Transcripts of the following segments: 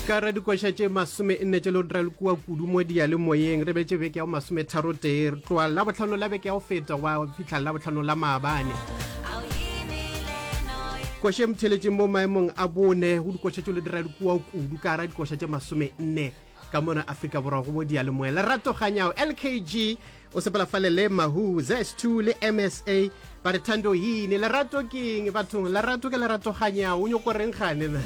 ka ra dikoša tše masome nne tše le re le kua kudu mo diyalemoyeng re betse beke ya go masome tharo tee re tloa la botlhano la beke ya go feta wa fitlha la botlhano la maabane koša e motheletšeng mo maemong a bone go dikoša tše le dira le kua kudu ka ra dikoša tše masome nne Ka mona Afrika Borwa go bo diyalemoya, Lerato Kganyago, LKG, o sepela fale le Mahu, ZS2 le MSA. Ba re thando yini, lerato ke eng? Bathong, lerato ke Lerato Kganyago, o nyoko reng gane na?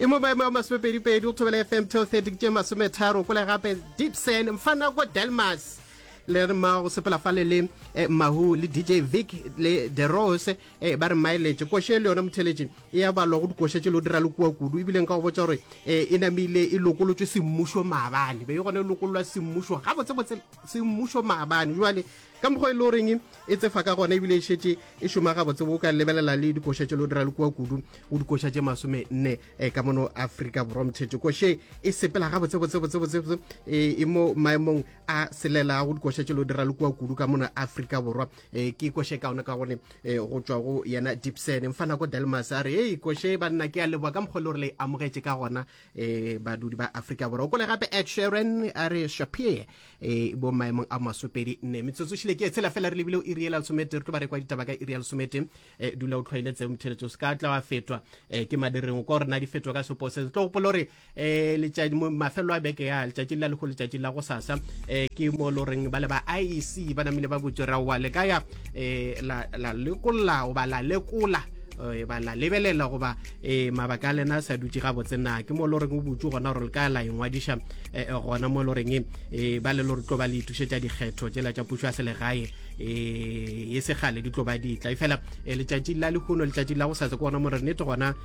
e mo maemo a masomepedipedi go thobela fm till 30 tše masometharo kole gape dipsen mfanako delmas le re ma go sepela fale le eh, mahu le dj vic le derose Ee, ba re mailetše, koše le yona motheletše e ya balwa go dikoše tše lo dira le kua kudu, ebile nka go botša gore e, e namile e lokolotšwe semmušo maabane, be e gone e lokololwa semmušo gabotsebotse semmušo maabane. Jwale ka mokgwa e le goreng e tsefa ka gona ebile e šetše e šoma gabotsebo o ka lebelela le dikoša tše lo dira le kua kudu go dikoša tše masome nne eh, ka mono aforika borwa mothetše koše e sepela gabotsebotsebotsebotsebo e, e mo maemong a selela go dikoša tše lo dira le kua kudu ka mono aforika borwa e ke ikoshe ka ona ka gone e go tswa go yena dipsene mfa nako delmas a re e ikoshe banna ke a leboa ka mokgwa le gore le amogetše ka gona e badudi ba afrika borwa o kole gape ed sharon a re shapir e bo maemong a masopedi nne metsotso šile ke e tshela fela re lebile o iriela lesomete re tlo ba re kwa ditaba ka iriela lesomete e dula o tlhwaile tseo mtheletso se ka tla wa fetwa e ke madireng o ka gore na di fetwa ka sepo se tlo gopola gore eh letšatši mafelo a beke ya letšatši la lekgo letšatši la go sasa eh ke mo lo reng ba le ba IEC ba namile ba botse ra wa le ka ya eh la la lekola o ba la lekola eh, ba la lebelela goba eh, mabaka a lena a sa dutse ga botse na ke mo lo reng o butse gona gore le ka la engwadiša eh, eh, gona mo lo reng eh, ba le lo re tlo ba le ithušetša dikgetho tsela tša pušo ya selegae eh, e segale di tlo ba ditla e fela eh, letšatši la lehono letšatši la go sa se ke gona mo re nete gona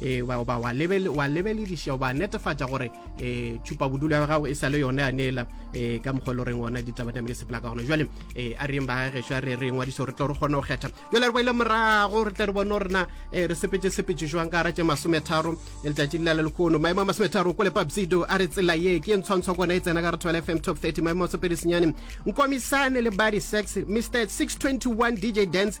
e ba ba wa lebel wa lebelediša ba netefatša gore e tšhupa bodulo ya gago e sa le yone ya neela e ka mokgwa le reng ona ditaba tame ke sepela ka gona jwale e a reng ba gešo a re re ngwadiso re tlo re kgone go kgetha jwale re boile morago re tle re bone gore na e, re sepetse sepetse jwang ka ra tše masometharo e letšatši le lale lekono maemo a masometharo ko lepapsido a re tsela ye ke e ntshwantshwa kona e tsena ka re thobela fm top 30 maemo a sopedi senyane nkomisane le body sex mr 621 dj dance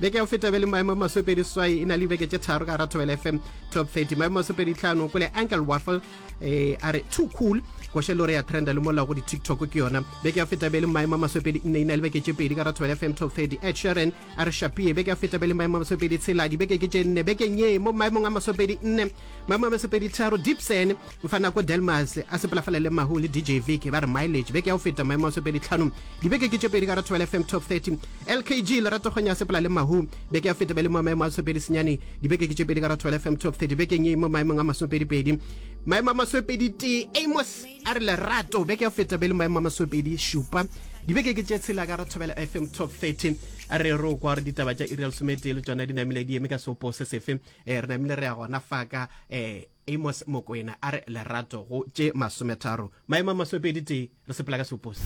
beke ya go feta bele maemo masopedi swai e na le dibeke tše tharo ka rathabela fm top 30 maemo masopedi tlhano kole ankel waffle eh, a re too cool koshe lore ya trenda le mola go di-tiktok ke yona beke ya feta bele maemo masopedi nne e na le beke tše pedi ka rathabela fm top 30 ed sharon a re shapie beke ya feta bele maemo masopedi tshela dibeke ke tše nne bekeng ye mo maemong a masopedi nne Ba Mabasepeditharo, Dipsen, Mfanako Delmas a sepelafala le Mahu le DJ Vic ba re Mileage beke ya go feta maemo a sepeditlhano. Dibeke ke tše pedi ka Rathabela FM Top 30. LKG Lerato Kgonya a sepela le Mahu beke ya go feta ba le mo maemo a sepedi senyane. Dibeke ke tše pedi ka Rathabela FM Top 30 bekeng ye mo maemong a masopedipedi. Maemo a masopeditee Amos a re Lerato beke ya go feta ba le maemo a masopedi šupa. Dibeke ke tše tshela ka Rathabela FM Top 30. A re re o kwa gore ditaba tša iri ya lesometee le tšona di namile di eme ka seopo se sefe. e re namile re ya gona fa ka eh amos mokwena a re lerato go tše masometharo maemo a masomepedi tee re sepela ka seopose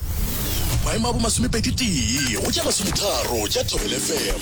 maemo a bo masomepedi tee go tše masometharo tša thobelefm